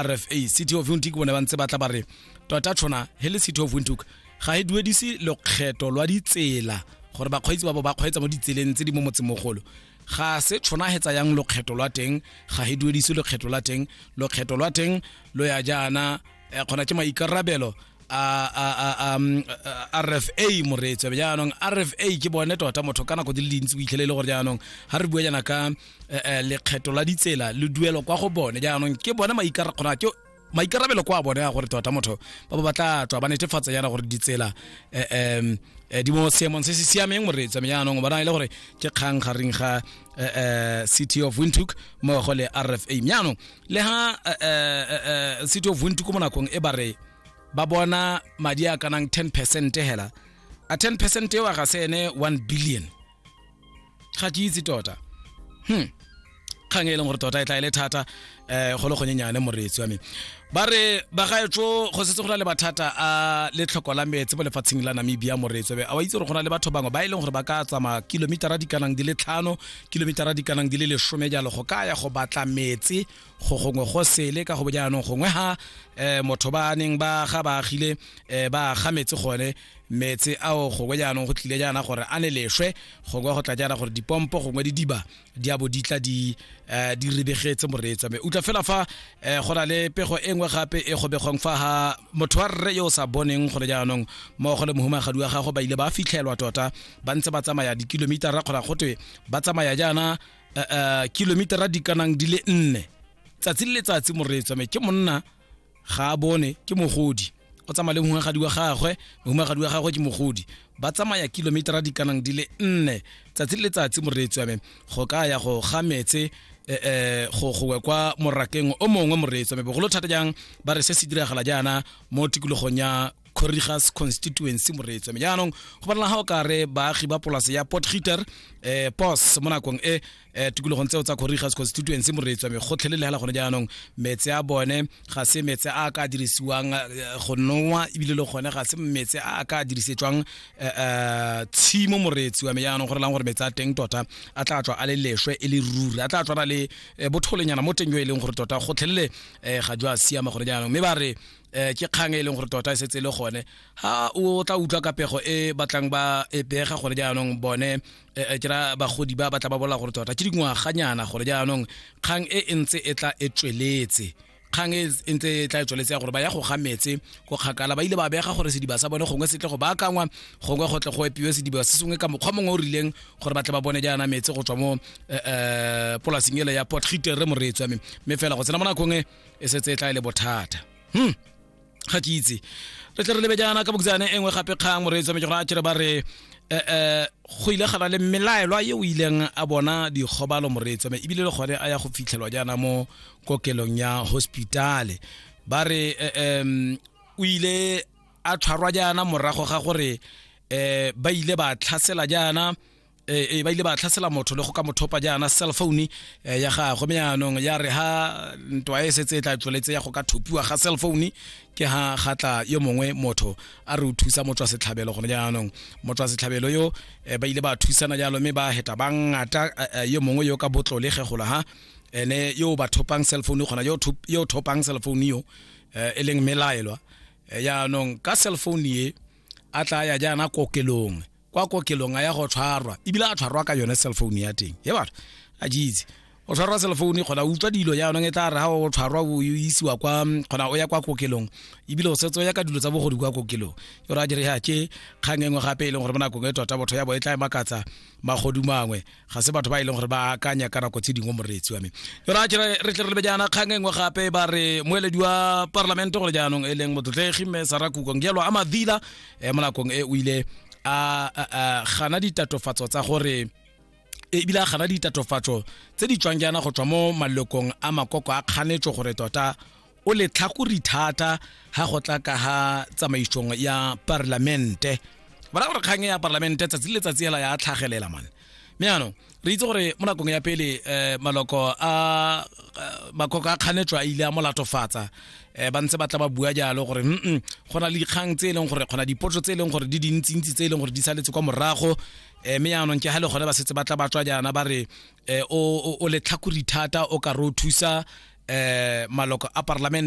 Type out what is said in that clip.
rfa city of windhoek bone ba ntse ba tla ba re tota tshwana he le city of windhoek ga e duedise lokgetho lwa ditsela gore bakgweetsi ba bo ba kgweetsa mo ditseleng tse di mo motsemogolo ga se tshwana he tsayang lokgetho lwa teng ga e duedise lokgetho la teng lokgetho lwa teng lo ya jaana eh, kgona ke maikarabelo a um, rfa moreetso jaanong rfa ke bone tota motho ka nako di le dintsi o itlhele e le gore jaanong ga re bua jaana ka eh, eh, lekgetho la ditsela le duelo kwa go bone jaanong ke bone maikarakgona ke maikarabelo kwa bone a gore tota motho ba ba batla tswa ba netefatsa yana gore ditsela um di mo seemong se se siameng moreetsa me jaanong ba na le gore ke kgang gareng ga city of wintook mmogo le rfa jaanong le ga city of wintook mo nakong e ba re ba bona madi a kanang 10 percent hela a 10 percent eo a ga se ene 1 billion ga ke itse tota hmm kgang e leng gore tota e tla e le thata um go le gonyenyane moreetsi wa me ba re bagaetso go setse go na le mathata a letlhoko la metse mo lefatsheng la namibia moreetsi wa me a wa itse gore go na le batho bangwe ba e leng gore ba ka tsamaya kilomitara di kanang di le tlhano kilomitara di kanang di le lesome jalo go ka ya go batla metse go gongwe go sele ka go bo jaanong gongwe ga um motho ba neng ba ga ba agile um ba ga metse gone meetse ao gongwe jaanong go tlile jaana gore a ne leswe gongwe go tla jaana gore dipompo gongwe di diba di abo di tla di eh, di rebegetse moreetsa me utlwa fela fa eh, go na le pego e nngwe gape e gobegong fa ga motho wa rre yo o sa boneng gore jaanong mmogo le mohumagadi wa gago ba ile ba fitlhelwa tota ba ntse ba tsamaya dikilomitara kgona gotwe ba tsamaya jaana eh, eh, kilomitara di kanang di le nne tsatsi le letsatsi moreetsa me ke monna ga a bone ke mogodi o tsamaya le mohumagadi wa gagwe mohumagadi wa gagwe ke mogodi ba tsamaya kilometera di kanang di le nne tsatsi le letsatsi moreetsi wa me go ka ya go ga metse eh, eh, go gowe kwa morakeng o mongwe moreetsi wa me bogolo thata jang ba re se se diragala jaana mo tikologong ya corrigas constituency moreetsi wa me jaanong go banela ga o kare baagi ba polase ya port heater eh, pos mo nakong e eh tikologong tseo tsa Korigas constituency moreetswa me gotlhele le hela gone jaanong metse a bone ga se metse a ka dirisiwang eh, go nowa ebile le gone ga se metse a ka dirisetswang eh, eh, tshimo moreetsi wa me jaanong gore lang gore metse a teng tota a tla tswa a le leshwe e le ruri a tla tswa le botholenyana mo teng yo e leng gore tota gotlhelele ga jo a siama gore jaanong mme ba re eh ke kgang e leng gore tota e setse e le gone ha o tla utlwa ka pego e batlang ba e pega gore jaanong bone e, e, ke ra bagodi ba ba tla ba bola gore tota ke dingwaganyana gore jaanong kgang e e ntse e tla e tsweletse kgang e, e ntse e tla e tsweletse ya gore ba ya go ga metse go kgakala ba ile ba bega gore sediba sa bone gongwe se tle go baakangwa gongwe go tle go epiwe sediba se sengwe ka mokgwa mongwe o rileng gore ba tle ba bone jaana metse go tswa mo um polasing ele ya port gitere moreetswa me mme fela go tsena mo nakong e e setse e tla e le bothata hmm ga ke itse re tle re lebe jaana ka bokutsane e nngwe gape kgang moreetsi wa mejora a tšere ba re um go ile gana le melaelwa ye o ileng a bona dikgobalo moreetsi me ebile le gone a ya go fitlhelwa jaana mo kokelong ya hospitale ba re um o ile a tshwarwa jaana morago ga gore um ba ile ba tlhasela jaana e ba ile ba tlhasela motho le go ka mothopa jaana cell phone eh, ya gagwe me yaanong ya re ha ntwa e setse e tla tsweletse ya go ka thopiwa ga cell phone ke ha ga tla yo mongwe motho a re o thusa motswa setlhabelo gone jaanong motswa setlhabelo yo eh, ba ile ba thusana jalo mme ba heta ba ngata eh, yo mongwe yo ka botlole ge gola ha ene yo ba thopang cell phone gona yo yo thopang cell phone yo e leng melaelwa yaanong ka cell phone ye a tla ya jaana kokelong kwa kokelong a ya go tshwarwa ebile a tshwarwa ka yone cell phone ya teng e batho a jeitse o tshwarwa cell phone kgona utlwa dilo jaanong e tla re ga o tshwarwa o isiwa kwa kgona o ya kwa kokelong ebile o setse o ya ka dilo tsa bogodi kwa kokelong ke gore a dire ya ke kgang engwe gape e leng gore mo nakong e tota botho ya bo e tla e makatsa magodu mangwe ga se batho ba e leng gore ba akanya ka nako tse dingwe moreetsi wa me jona kere re tle re lebe jaana kgang e nngwe gape ba re moeledi wa parlamente gore jaanong e leng motlotlegi mme sara kukong jalo a madila um mo nakong e o ile a gana ditatofatso tsa gore ebile a gana ditatofatso tse di tswang jaana go tswa mo malokong a makoko a kganetso gore tota o le tlhakori thata ga go tla ka ga tsamaisong ya parlamente ba ra gore kgang ya parlamente tsatsi le letsatsi hela ya tlhagelela mane mme yaanong re itse gore mo nakong ya pele um maloko a makoko a kganetswa a ile a molatofatsa um ba ntse ba tla ba bua jalo gore mm go na le dikgang tse e leng gore kgona dipotso tse e leng gore di dintsintsi tse e leng gore di saletse kwa morago um mme yaanong ke ga le gone ba setse ba tla ba tswa jaana ba re eh, o, o, o letlhakori thata o ka re o thusa eh, maloko a parlamente